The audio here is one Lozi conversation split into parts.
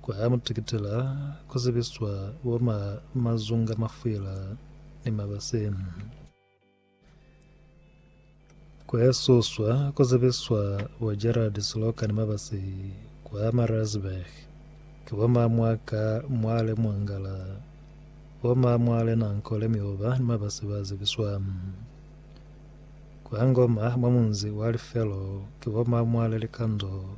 Kwa muteketela ku zibiswa bo ma mazunga, mafwila ni mabase. Kwa suswa ku zibiswa bo Gerald Siloka ni mabase kwa Maritzburg. Ki bo ma mwaka mwale mwangala, bo ma mwale nankole mioba ni mabase ba zibiswa. Kwa Ngoma mwa munzi wa Lifelo ki bo ma mwale likando,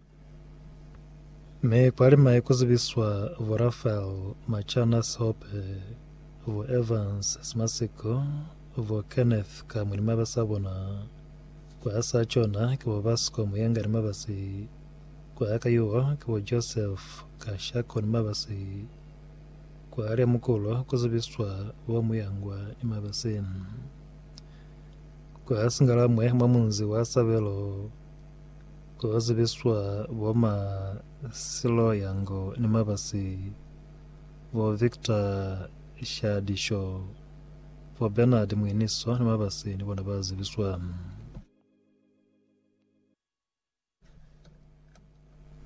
Mi kwalima ku zibiswa bo Raphael Machana Seope, bo Evans Smasiko, bo Kenneth Kamwi ni mabasa a bona. Kwa hasi ha cona ki bo Basco Muyenga ni mabasi. Kwa ya ka yuho ki bo Joseph Kashako ni mabasi. Kwa ya Lemukulo ku zibiswa bo Muyangwa ni mabasi. Kwa Singalamwe mwa munzi wa Sabelo. Ku ka zibiswa bo ma Silo Yang ni mabasi, bo Victor Shadisho, bo Bernard Mwiniso ni mabasi ni bona ba zibiswa.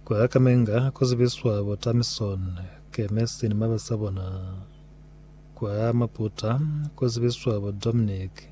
Ku ya ka Menga ku zibiswa bo Tamison Kemesi ni mabasi a bona. Kwa Maputa ku zibiswa bo Dominic.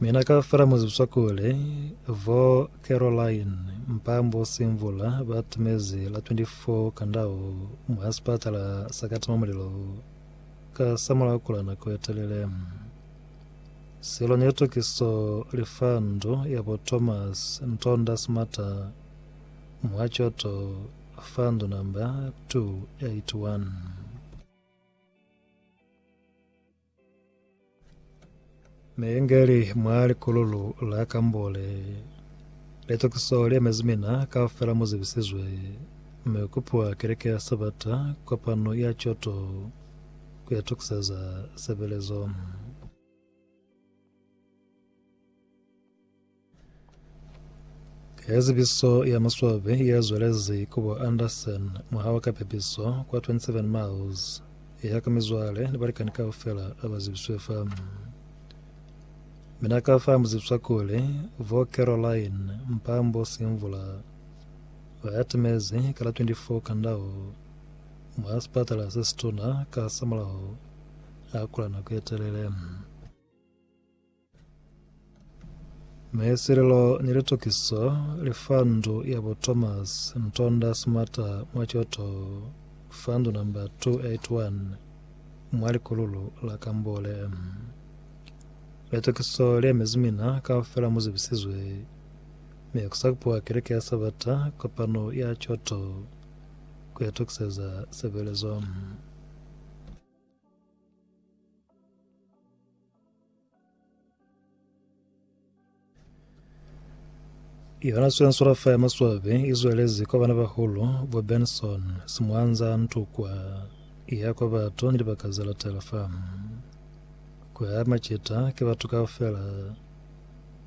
Mina kaufela mu zwizwa kuli vho Caroline Mpambo Simvula ba tumezi la 24 kandau mwa sipatala sa Katima-Mulilo ka samulaho kula nako ye telele. Silo ni litukiso li fa ndu ya bo Thomas Ntonda Smata mwa Choto fa ndu namba 281. Neengeli mwa likululu la Kambole. Litokiso liemezi mina kaufela muzibisizwe, mi kupiwa keleke ya Sabata kopano ya Kyoto kuitokiseza sebelezo. Ka zibiso ya maswabi ya zwelezi ku bo Anderson mwaha wa kapepiso kwa 27 miles ya ka mizwale ni balikani kaufela aba zibiswe fa. Mina ka fa muzibiswa kuli vo Caroline Mpambo Simvula ba ya timezi ka la 24 Kandao mwa sipatala se situna ka samulaho a kula nako ye telele. Maeselelo ni litokiso li fa ndu ya bo Thomas Ntonda Smarter mwa Kyoto fa ndu namba 281 mwa likululu la Kambole. Litokiso li emezi mina kaufela mu zibisizwe mi ku sa kupiwa Keleke ya Sabata kopano ya Kyoto ku itokiseza sebelezo. Yona swensura fa ya maswabi i zwelezi kwa bana bahulu bo Benson, Simwanza, Ntukwa, ya kwa batu ni libaka ze latela fa. Kwa ya macita ki batu kaufela,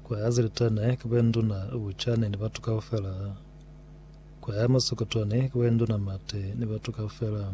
kwa ya zilitene ki boinduna Buchane ni batu kaufela, kwa ya masokotwani ki boinduna Mate ni batu kaufela.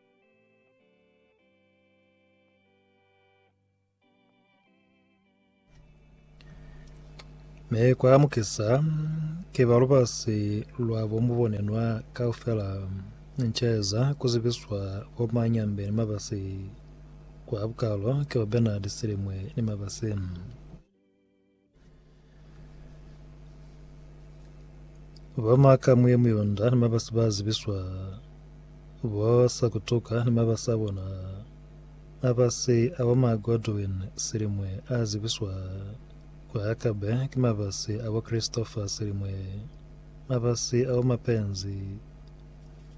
Mi kwa mukisa ke ba lubasi lwa bo mubonenwa kaufela ncheza kuzibiswa bo manyambe ni mabasi kwa bukalo ke ba Bernard Silimwe ni mabasi. Ba maka mwe muyonda ni mabasi ba zibiswa ba sa kutuka ni mabasi a bona mabasi a bo ma Godwin Silimwe a zibiswa kwa Akabe ki mabasi a bo Christopher Silimwe mabasi a bo Mapenzi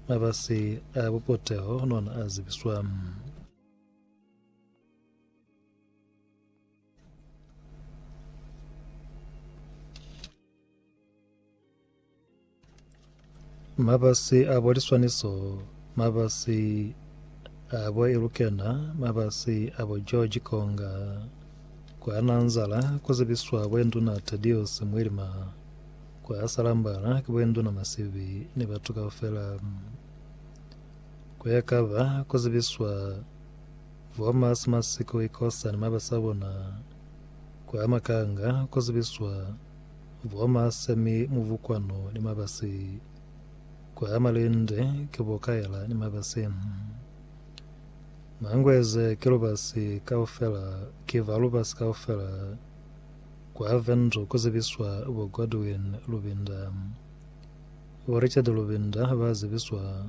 mabasi a bo Puteho nona a zibiswa Mabasi a bo liswaniso, mabasi a bo Elukena, mabasi a bo George Konga. Kwa Nanzala ku zibiswa bwenduna Tadius Mwilima. Kwa Salambala ki bwenduna Masibi ni batu kaufela. Kwa Yakaba ku zibiswa Vhomas Masiko Ikosa ni mabasa bona kwa Makanga ku zibiswa Vhomas mi Muvukwano ni mabasi kwa Malinde ki bo Kaela ni mabasi. Mangweze ki lubasi kaufela ki ba lubasi kaufela kwa Vendu ku zibiswa bo Godwin Lubinda. Bo Richard Lubinda ba zibiswa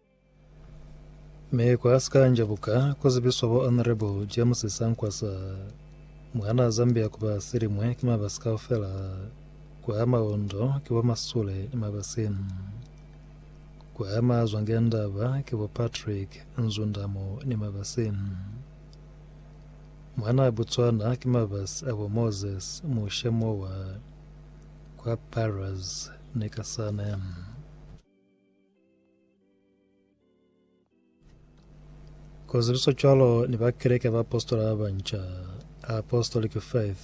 Mi kwa Sikanja buka kuzibiswa bo Honorable James Sankwasa mwana Zambia kuba silimwe ki mabasi kaufela kwa maondo ki bo Masule ni mabasi kwa mazwa ngendaba ki bo Patrick Nzundamo ni mabasi mwana Botswana ki mabasi abo Moses Mushemowa kwa Paras ni Kasane. Kozibiso cwalo ni ba Keleke ya Baapositola ba Banca, Apostolic Faith,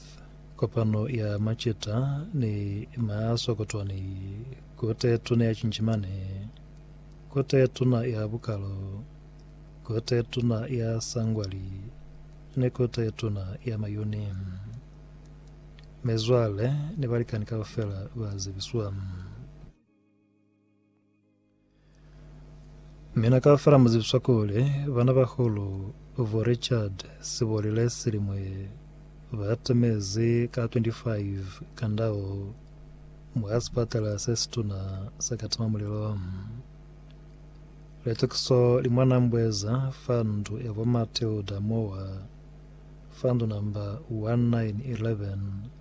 kopano ya macita ni maaso kotwani kote tuna ya Cinjimane, kote tuna ya Bukalo, kote tuna ya Sangwali, ni kote tuna ya Mayuni. Mezwale ni balikani kaufela ba zibiswa. Mina kaufela muzibiswa kuli bana bahulu bo Richard sibolile silimwe batemezi ka 25 ka ndau mwa sipatala sesituna sa Katima Mulilo. Litukiso li mwa Nambweza fa ndu ya bo Matilda Mowa fa ndu namba 1911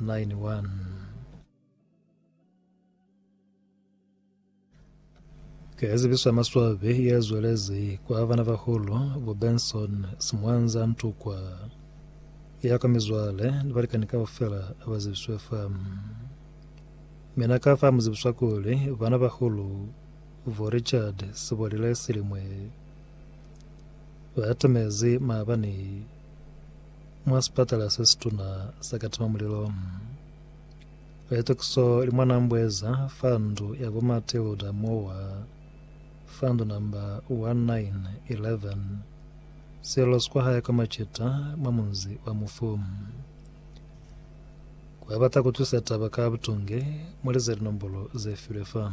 Line 1. Ka ya zibiso ya maswabi ya zwelezi kwa bana bahulu bo Benson Simwanza Ntukwa ya ka mizwale ni balikani kaufela ba zibiswe fa. Mina ka fa mu zibiswa kuli bana bahulu bo Richard Sibolile Silimwe ba atamezi maabani Mwa sipatala se situna sa Katima Mulilo, Letokiso li mwa Nambweza fa ndu ya bo Matilda Mowa fa ndu namba 1911, Sello sikwa hae kwa Macita mwa munzi wa Mufu. Ku ba bata ku twisa taba ka butunge, mu lize linombolo ze filwe fa.